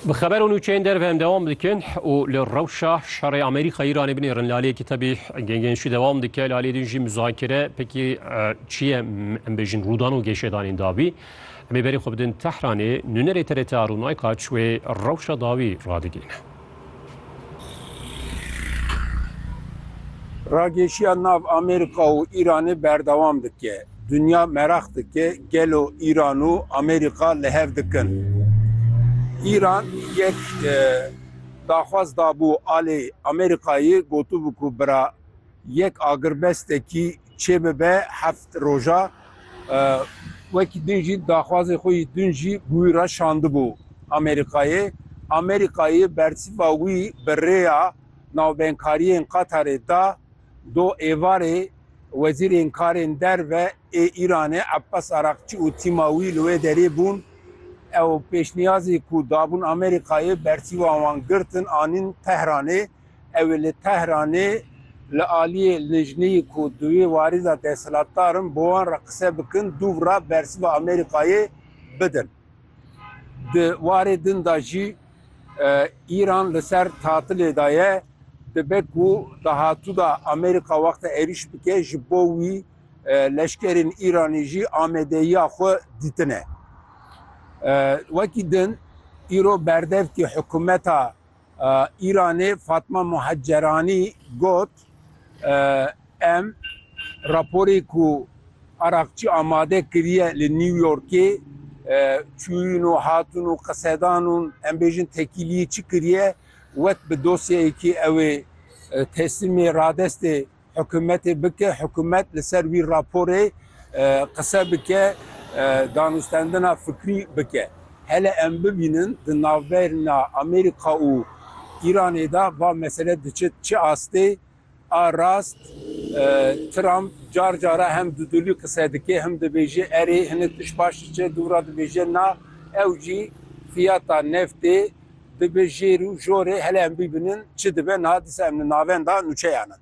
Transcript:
Bi xeber û nûçeyên derve em dewam dikin û li rewşa şerê Amerîka-Îranê binêrin lalê kitabî gengên şî dewam dike lalê din jî muzakere pekî çi ye em bêjin rûdan û gêşedanên dawî em ê berê xwe bidin Tehranê nûnerê TRT Arûn Aykaç wê rewşa dawî radigihîne. Rageşiya nav Amerîka û Îranê berdewam dike. Dinya meraq dike gelo Îran û Amerîka li hev dikin. Îran yek daxwaz dabû alê Amerîkayê, gotibû ku bira yek agirbestekî çê bibe heft roja wekî din jî daxwazê xwe yî din jî bi wî re şandibû Amerîkayê. Amerîkayê bersiva wî bi rêya navbenkariyên Qatarê da do êvarê Wezîrên Karên Derve ê Îranê Ebbas Araqçî û tîma wî li wê derê bûn. Ew pêşniyazê ku dabûn Amerîkayê bersiva wan girtin anîn Tehranê. Ew li Tehranê li aliyê lijneyê ku duwê warî de desthilatdar in bi wan re qise bikin dûvra bersiva Amerîkayê bidin. Di warê din de jî Îran li ser tatilê de ye, dibe ku dahatû de Amerîka wexta êrîş bike ji bo wî leşkerên Îranî jî amadeyiya xwe dîtine. Wekî din îro berdevkî hikûmeta. Îranê Fatma Muhecceranî got, Em raporê ku Araqçî amade kiriye li New Yorkê çûyîn û hatin û qisedan û em bêjin tekîliyê çi kiriye wek bi dosyeyekî ew ê teslimê radestê Hikûmetê bike, hikûmet li ser wî raporê qise bike, danûstendina fikrî bike. Hele em bibînin di navberna Amerîka û Îranê de va mesele diçe çi astê. A rast Trump car cara hem dudulî qise dike hem dibêje erê hinek tişt baş diçe, dû re dibêje na. Ew jî fiyata neftê Dibe jêr û jorê hele em bîbinin çi dibe niha dîsa em li navenda nûçeyan in.